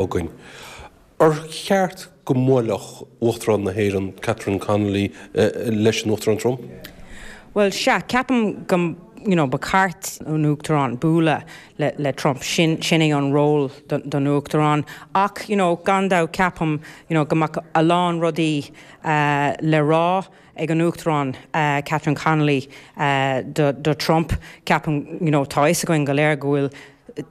againn. Ar cheart go mbuaileadh Uachtarán na hÉireann, Catherine Connolly, leis an Uachtarán Trump? Bhuel, sea, ceapaim go, you know, ba cheart an Uachtarán bualadh le Trump, sin, sin é an ról don Uachtarán. Ach, you know, gan dabht, ceapaim, you know, go mbeadh a lán rudaí le rá ag an Uachtarán Catherine Connolly do Trump. Ceapaim, you know, tá a fhios againn go léir go bhfuil,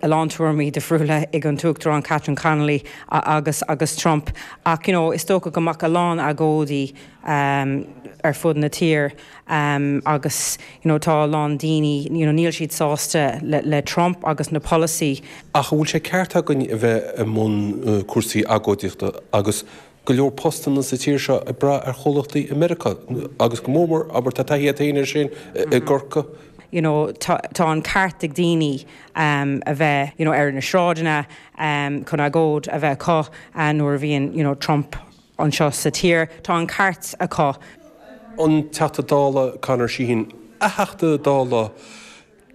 a lán tuairimí difriúla ag an tUachtarán Catherine Connolly agus agus Trump ach you know is dócha go mbeadh a lán agóidí ar fud na tíre agus you know tá a lán daoine you know níl siad sásta le le Trump agus na polasaí Ach an bhfuil sé ceart againn a bheith i mbun cúrsaí agóidíochta agus go leor postanna sa tír seo ag brath ar chomhlachtaí i Meiriceá agus go mór mór abair tá taithí agat féin air sin i gCorcaigh. you know tá an ceart ag daoine a bheith you know ar na sráideanna chun agóid a bheith acu nuair a bhíonn you know Trump anseo sa tír. Tá an ceart acu. an Teachta Dála Conor Sheehan, a Theachta Dála.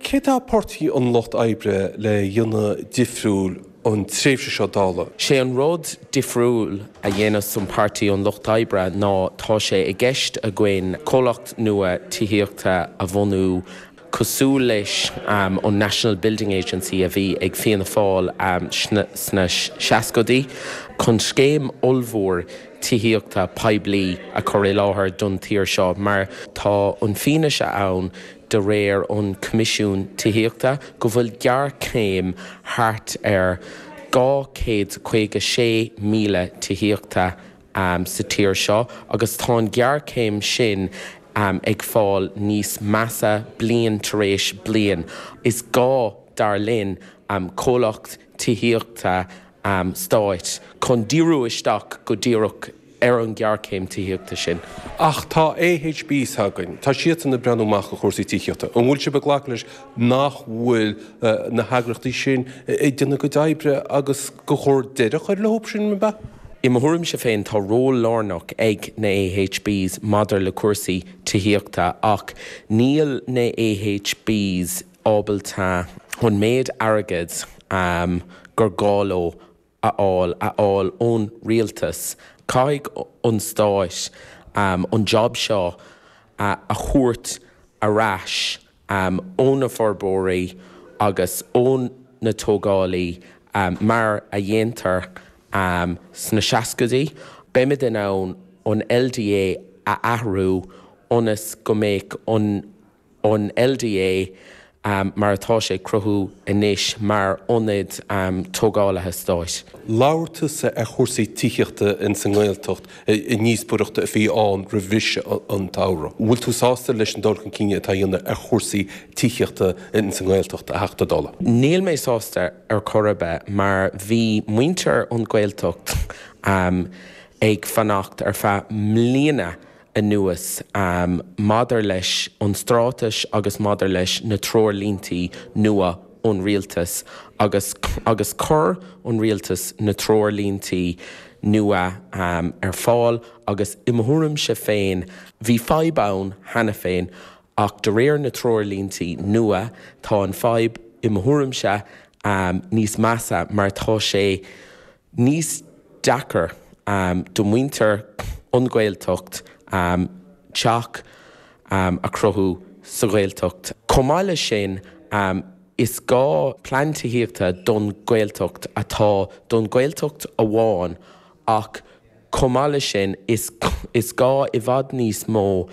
Céard atá Páirtí an Lucht Oibre le déanamh difriúil an tréimhse seo Dála? Sé an rud difriúil a dhéanam sa Páirtí an Lucht Oibre ná tá sé i gceist againn comhlacht nua tithíochta a bhunú cosúil leis an National Building Agency a bhí ag Fianna Fáil sna seascaidí chun scéim ollmhór tithíochta poiblí a chur i láthair don tír seo mar tá an fianaise ann de réir an Coimisiún Tithíochta, go bhfuil géarchéim thart ar 256,000 tithíochta sa tír seo agus tá an ghéarchéim sin ag fáil níos measa bliain tar éis bliain. Is gá, dar linn, comhlacht tithíochta stáit chun díriú isteach go díreach ar an ghéarchéim tithíochta sin. Ach tá AHBs againn, tá siadsan ag breathnú amach ar chúrsaí tithíochta. An bhfuil sibh ag glacadh leis nach bhfuil na heagraíochtaí sin ag déanamh a gcuid oibre agus gur chóir deireadh a chur leo, sin an mbealach? I mo thuairimse féin, tá ról lárnach ag na AHB's maidir le cúrsaí tithíochta ach níl na AHB's ábalta chun méid airgid gur gá leo a fháil, a fháil ón rialtas. Caithfidh an stáit an jab seo a thabhairt ar ais ó na forbróirí agus ó na tógálaí mar a dhéantar sna seascaidí. Beimid in ann an LDA a athrú ionas go mbeadh an. an LDA mar atá sé ag cruthú anois mar ionad tógálaí stáit. Labhair tusa ar chúrsaí tithíochta in san nGaeltacht i ndíospoireacht a bhí ann roimhis an samhradh. An bhfuil tú sásta leis an dul chun cinn atá a dhéanamh ar chúrsaí tithíochta in san nGaeltacht, a Theachta Dála? Níl mé sásta ar chor ar bith mar bhí muintir an Ghaeltacht ag fanacht ar feadh mbliana anuas. Maidir leis an straitéis agus maidir leis na treoirlíntí nua ón rialtas, agus agus chuir an rialtas na treoirlíntí nua ar fáil agus i mo thuairimse féin, bhí fadhb ann cheana féin ach de réir na treoirlíntí nua, tá an fhadhb, i mo thuairimse, níos measa mar tá sé níos deacair do mhuintir an Ghaeltacht teach a chruthú sa Ghaeltacht. Chomh maith leis sin, is gá plean tithíochta don Ghaeltacht atá don Ghaeltacht amháin ach Chomh maith leis sin, is gá i bhfad níos mó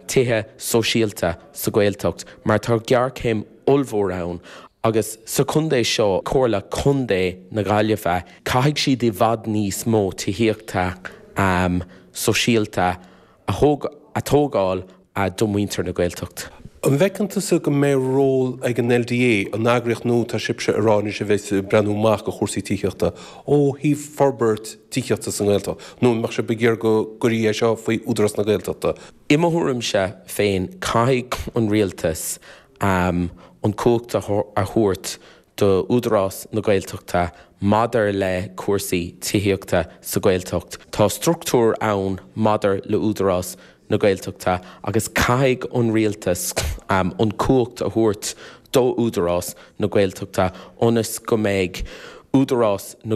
tithe sóisialta sa Ghaeltacht mar tá géarchéim ollmhór ann agus sa chontae seo, Comhairle Contae na Gaillimhe, caithfidh siad i bhfad níos mó tithíochta sóisialta a. a tógáil do mhuintir na Gaeltacht. An bhfeiceann tusa go mbeidh ról ag an LDA, an eagraíocht nua atá sibhse ag rá anois a bheidh ag breathnú amach do chúrsaí tithíochta, ó thaobh forbairt tithíochta sa nGaeltacht, nó an mbeadh sibh ag iarraidh go gcuirfí é seo faoi Údarás na Gaeltachta? I mo thuairimse féin, caithfidh an Rialtas an cumhacht a thabhairt do Údarás na Gaeltachta maidir le cúrsaí tithíochta sa Ghaeltacht. Tá struchtúr ann maidir le Údarás na Gaeltachta agus caithfidh an Rialtas an cumhacht a thabhairt do Údarás na Gaeltachta ionas go mbeidh Údarás na